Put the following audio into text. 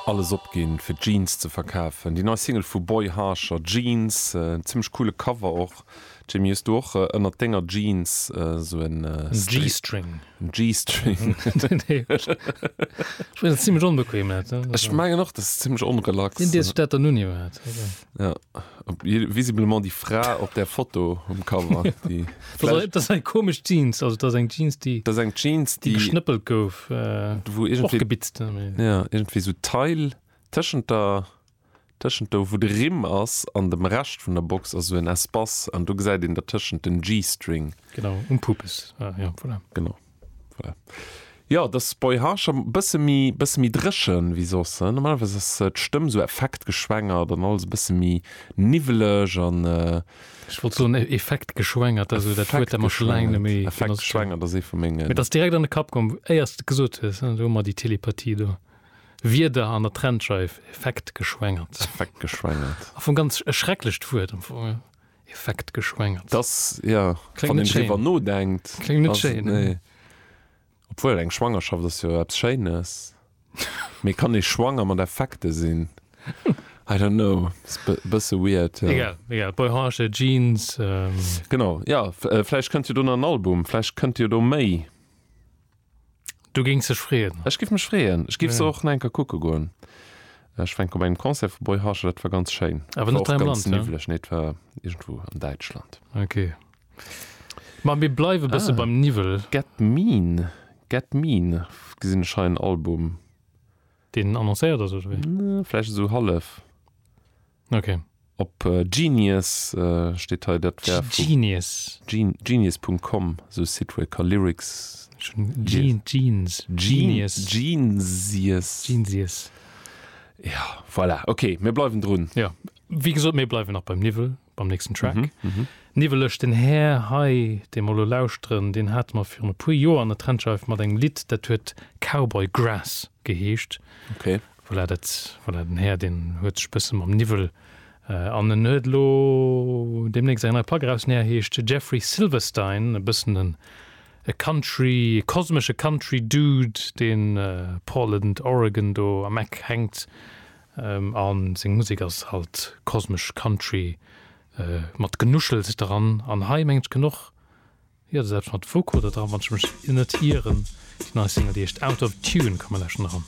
Alles opginn fir Jeans ze verkafen. Déi nei Single vu Boy Harsher, Jeans, zimmlech coole Cover och. Jimmy hues du och ënnert denger Jeans sou en G-String? En G-String? Nee hues du net. Ech mengen ass zimmlech onbequem net? Ech mengen och dass zimmlech onrelax. Deen dees ech dat dann un iwwerhaat. Ja, visiblement die Fra op der Foto um Cover das ein komisch Jeans also das eng Jeans die das eng Jeans die geschnëppelt gouf äh, wo irgendwie gebitzt ja irgendwie so Teil tschent der tschent do wo de Rimm ass an dem Recht vun der Box also en Espace an du gesäit den der tschent den G-String genau um Pupes ah, ja, voilà. genau. Voilà. Jo, et ass bei Harsh e bësse méi, bësse méi dréchen wéi soss. Normalerweis ass d'Stëmm esou effektgeschwängert an alles e bësse méi niwweleg an. Ech wollt soen e, effektgeschwängert, dat ass esou dat Wuert, dat mer scho laang net méi. Effektgeschwängert ass ee vu mengen. Mir ass direkt an de Kapp komm, éier s de et gesot hues, do hu mer déi Telepathie do. Wierder an der Trennscheif, effektgeschwängert. Effektgeschwängert. Am Fong ganz e schrecklecht Wuert am Fong. Effekt geschwängert. Dass, ja, Kléngt wann net een schéin. driwwer nodenkt, Kléngt net ass et, schéin. nee. Obwuel, eng Schwangerschaft ass jo eppes Schéines. Mee kann ee schwanger mat Effekte sinn? I don't know, ass be bësse weird, ja. Egal, egal, Boyhoornche Jeans, ähm. Genau, ja, v vläicht kënnt jo do nach en Album, vläicht kënnt jo do méi. Du géings dech freeën? Ech giff mech freeën. Ech giff se och nach eng Kéier kucke goen. Ech war eng Kéier op engem Concert vu Boy Harsher, dat war ganz schéin. Awer net hei am Land? War och ganz niwwleg. Nee, et war iergendwou an Däitschland. Ok. Ma mir bleiwe bësse beim Niwwel. Ah, Get Mean. Get Mean gesinn ech hei, en Album. Deen annoncéiert ass oder wéi? Vläicht esou hallef. Okay. Op Genius steet hei, dat wär vu. Genius. Genius Punkt Com, esou e Site wou ee ka Lyrics. Jeans. Genius. Genius. Genius. Ja, voilà, okay, mir bleiwen drun. Jo, wéi gesot, mir bleiwen nach beim Niwwel, beim nächsten Track. Niwweleg, den Här hei, dee mer elo lauschteren, deen hat mer virun e puer Joer an der Trendscheif mat engem Lidd, dat huet Cowboy Grass geheescht. Okay. Voilà, dat, voilà, den Här, deen huet sech bësse mam Niwwel, an en huet elo deemnächst eng nei Plack eraus, den Här heescht Jeffrey Silverstein, e bëssen en, e Country, e kosmesche Country Dude, dee Portland, Oregon do am Eck hänkt, a seng Musek ass halt kosmesch Country, mat Genuschels dran, an hei mengen ech gëtt och, jo, dat ass eppes mat Vocoder dran, wann ech mech net ieren, déi nei Single, déi heescht Out of Tune, komme lauschten eran.